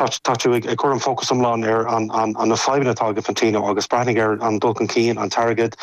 Tá tú ag cur an fócas iomlán ar na fadhbanna atá ag Infantino agus breathnaigh ar an dul chun cinn, an t-airgead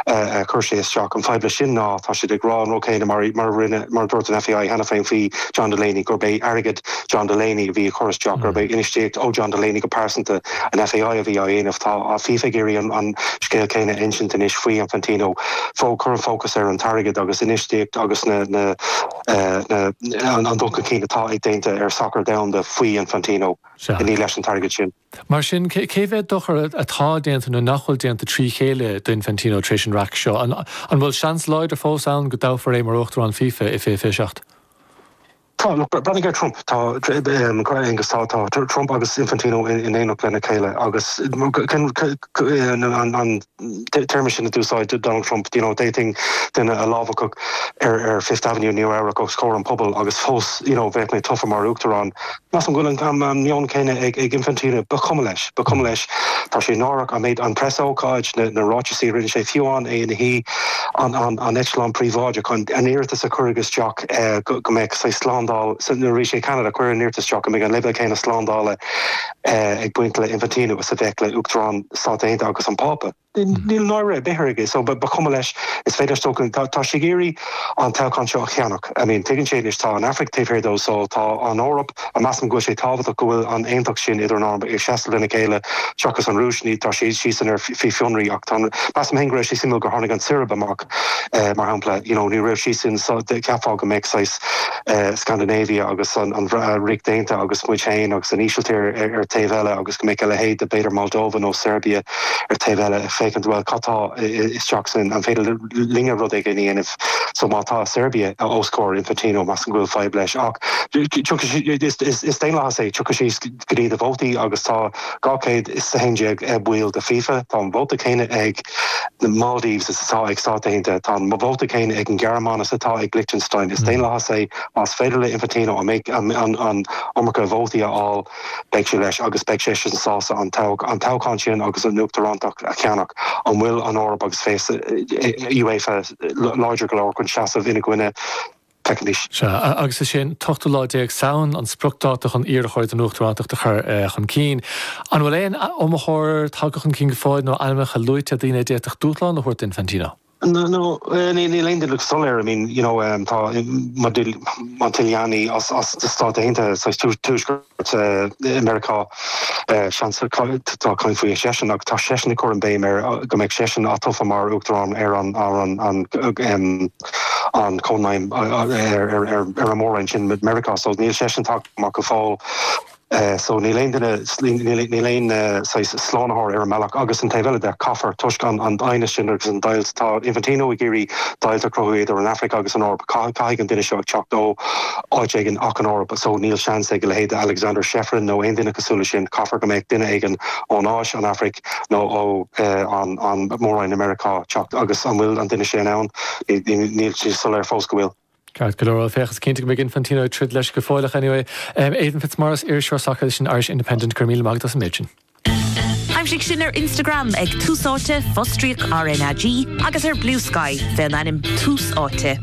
a chuir sé isteach. An fadhb leis sin ná tá siad ag rá an rud céanna mar a rinne, mar a dúirt an FAI cheana féin faoi John Delaney, gurb é airgead John Delaney a bhí á chur isteach, gurb é infheistíocht ó John Delaney go pearsanta an FAI a bhí á dhéanamh. Tá FIFA ag iarraidh an scéal céanna a insint anois faoi Infantino, cur an fócas ar an t-airgead agus infheistíocht agus na. An dul chun cinn atá déanta ar sacar domhanda faoi Infantino, ní leis an t-airgead sin. Mar sin, cé mhéad dochar atá déanta nó nach bhfuil déanta trí chéile do Infantino tar éis an raic seo? An bhfuil seans láidir fós ann go dtoghfar é mar Uachtarán FIFA i 2027? Tá. Breathnaigh ar Trump agus tá Trump agus Infantino in éineacht lena chéile agus an. téarma sin a d'úsáid Donald Trump, you know, d'fhéadfainn duine a lámhach ar ar Fifth Avenue i Nua-Eabhrac os comhair an pobail agus fós, you know, bheinn tofa mar Uachtarán. Measaim go bhfuil an an meon céanna ag ag Infantino. Ba chuma leis. Ba chuma leis. Tá sé náireach an méid an preasócáid, na na ráiteasaí a rinne sé, fiú amháin é ina shuí an an an eitleán príobháideach chun an iarratas a cuireadh isteach go go mbeadh saghas slándáil sa nuair a bhí sé i Ceanada cuireadh an iarratas isteach go mbeidh an leibhéal céanna slándála ag baint le Infantino is a bheadh le Uachtarán na Stáit Aontaithe agus an Pápa. Níl náire ar bith aige so ba chuma leis. Is féidir leis dul chun cinn. Tá sé ag iarraidh an toghchán seo a cheannach. I mean, tuigeann sé anois, tá an Afraic taobh thiar de so tá an Eoraip, measaim go bhfuil sé tábhachtach go bhfuil an aontacht sin idir an Eoraip ag seasamh lena chéile seachas an Rúis, ní, tá siad siadsan ar fionraí ach tá an, measaim féin go raibh sé suimiúil gur tháinig an tSeirb amach mar shampla, you know, ní raibh siadsan so cheapfá go mbeadh saghas. Scandinavia agus an Ríocht Aontaithe agus muid féin agus an Ísiltír ar taobh eile agus go mbeadh a leithéid de b'fhéidir Moldova nó Seirbia ar taobh eile ag féachaint bhuel cad tá isteach san, an féidir linne rud éigin a dhéanamh so má tá Seirbia os comhair Infantino measaim go bhfuil fadhb leis ach tiocfaidh sí, is daonlathas é, tiocfaidh sé. go dtí na vótaí agus tá 211 baill de FIFA. Tá an vóta céanna ag na Maldives is atá ag Stáit Aontaithe. Tá an vóta céanna ag an Ghearmáin is atá ag Liechtenstein. Is daonlathas é. Más féidir le Infantino an iomarca vótaí a fháil beidh sé leis agus beidh seisean sásta an toghchán sin agus an Uachtarántacht a cheannach. An bhfuil an Eoraip agus UEFA láidir go leor chun seasamh ina gcoinne? teicnis. Sea, agus is é an t-ochtú lá déag Samhain an spriocdáta chun iarrthóir don Uachtarántacht a chur chun cinn. An bhfuil aon iomaitheoir tagtha chun cinn go fóill nó ainmneacha luaite, daoine a d'fhéadfadh dúshlán a thabhairt d'Infantino? Níl aon duine soiléir. I mean, you know, tá Montagliani as na Stáit Aontaithe, saghas Tuaisceart. i Meiriceá. Seans tá caint faoi seisean agus tá seisean ag cur an béim ar go mbeidh seisean atofa mar Uachtarán ar an an Chónaidhm ar an Mhór-Roinn sin Meiriceá so níl seisean tagtha ar fáil so níl aon duine níl aon saghas slánaitheoir ar an mbealach agus an taobh eile de caithfear toisc an an aighneas sin agus an deighilt tá Infantino ag iarraidh deighilt a chruthú idir an Afraic agus an Eoraip caithfidh an duine seo a teacht ó áit éigin ach an Eoraip so níl seans ag a leithéid de Aleksander Ceferin nó aon duine cosúil le sin, caithfear go mbeadh duine éigin ón Áis, an Afraic nó ó an an Mór-Roinn i Meiriceá teacht agus an bhfuil an duine sin ann? Níl sé soiléir fós go bhfuil. Ceart go leor, bhuel féach is cinnte go mbeidh Infantino ag troid leis go fóilleach anyway. Aidan Fitzmaurice, iriseoir sacair leis an Irish Independent, go raibh míle maith agat as an méid sin. Aimsigh sinn ar Instagram ag Tús Áite, fostríoc RnaG agus ar Bluesky fén ainm Tús Áite.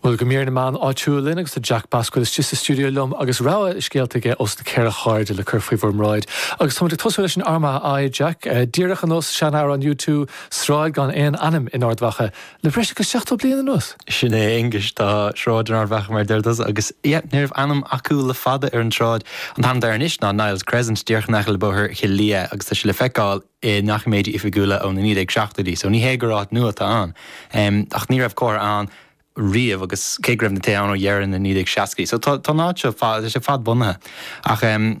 Bhuel, go mbeire na meáin áitiúil linn agus tá Jack Basquill istigh sa stiúideo liom agus rogha scéalta aige ó na ceithre hairde le cur faoi bhur mbráid. Agus táimid ag tosú leis an Armagh I, Jack, díreach ar nós sean-amhrán U2, Sráid gan aon ainm in Ard Mhacha, Le breis agus 70 bliain anuas? Sin é, Aonghus, tá sráid in Ard Mhacha mar a deir tusa, agus yep, ní raibh ainm acu le fada ar an tsráid. An t-ainm atá air anois ná Niall's Crescent, díreach in aice le bóthar Choillidh Léith, agus tá sé le feiceáil i ndoiciméidí oifigiúla ó na 1970idí, so ní hé gur áit nua atá ann. Ach ní raibh comhartha ann riamh agus cé go raibh na tithe ann ó dheireadh na 1960idí, so tá an áit seo fad, tá sé fad-bhunaithe. Ach.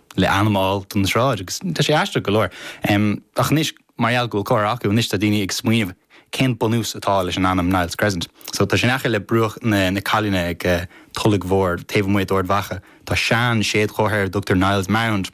le ainm a fháil don tsráid agus tá sé aisteach go leor. Ach anois mar gheall go bhfuil comhartha acu anois tá daoine ag smaoineamh cén bunús atá leis an ainm Niall's Crescent. So tá sé in aice le bruach na Callainne ag Tulaigh Mhór taobh amuigh d'Ard Mhacha. Tá seanséadchomhartha ar a dtugtar Niall's Mound.